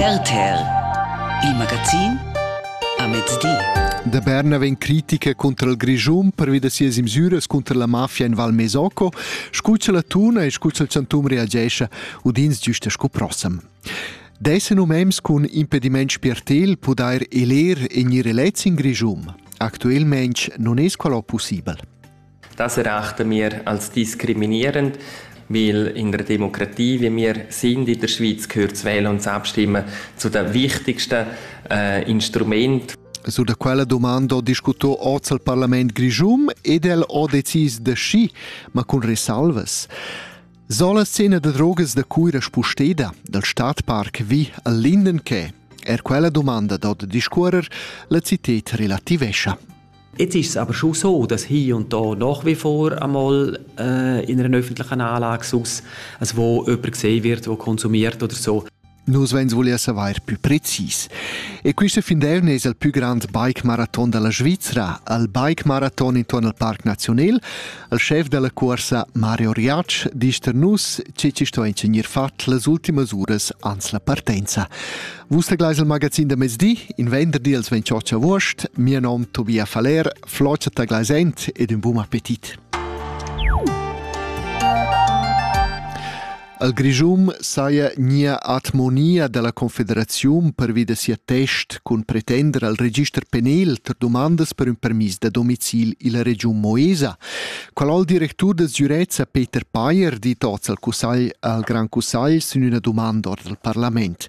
RTL, il magazin a mezdi. Da Berna vegn critica contro il Grischun pervi da sias imsüras contro la mafia in Val Mesocco. Scuccia la tuna e scuccia il chantum reagesce, udins giusta sco prossem. Desse nomems cun impediment spiertel pudair eler e gnir elets in Grischun. Actuelmente non es qual possibel. Da serachten wir als diskriminierend, weil in der Demokratie, wie wir sind in der Schweiz, gehört das Wählen und das Abstimmen zu den wichtigsten äh, Instrumenten. Su da quella domanda ho discuto oz al parlament grischum ed el ho decis da schi, ma cun resalvas. Sola scena da drogas da Cuira spusteda, dal Stadtpark vi al Lindenke. Er quella domanda dod discuorer la cited relativescha. Jetzt ist es aber schon so, dass hier und da nach wie vor einmal äh, in einer öffentlichen Anlage sonst, also wo jemand gesehen wird, der konsumiert oder so, Nus vegns voler saver pü precis. E quista findern es il pü grand bike marathon della Svizzera, al bike marathon intorno al Parc Nazional, al chef della corsa Mario Riac disch ter nus che ci sto ingegnir fat las ultimas uras ans la partenza. Vus tegleis il magazin da mezdi, in venderdi als 28 august. Mio nom Tobias Faller, Floccia Taglaisent ed un buon appetit. Al Grischum saja nia atmonia della Confederazione pervi da sia test cun pretender al register penal per domandas per un permis da domicil illa Region Moesa. Qual al directur del Zürezza Peter Payer di tots al cussagl al Gran Cussagl sin una domanda ord al Parlament.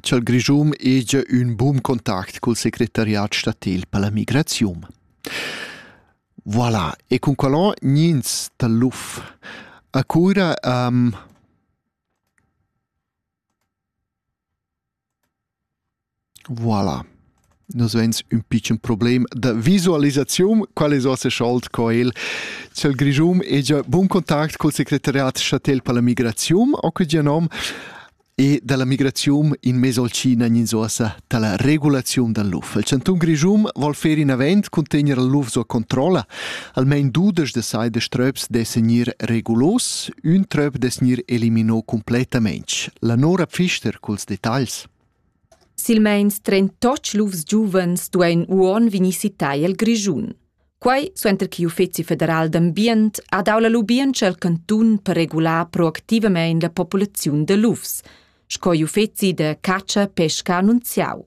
cha'l Grischun hegia ün bun contact cul secretariat statil per la migraziun. Voilà, e cun qualon gnins dal LUF a cura um, Voilà. Nus vegns ün pitschen problem da visualisaziun. Qual es vossa schuld co el cel Grischun e già bun contact col secretariat statel per la migraziun, o que già nom, e dalla migraziun in mezzo al Cina in sosa dalla regulaziun dal luf. Il Cantun Grischun vol fer in avent cun tener il luf sua controlla. Almain dudesch de sai de ströps de segnir regulos, ün tröp de segnir elimino completamente. La Nora Pfister culs dettagls. Silmeins trentotg lufs giuvens duein uonn vegnir sittai el Grischun. Quei suenter che l'Uffeci federal d'ambient ha dau la lubientscha al cantun per regular proactivamein la populaziun de lufs, sco l'uffeci de catscha e pesca annunziau.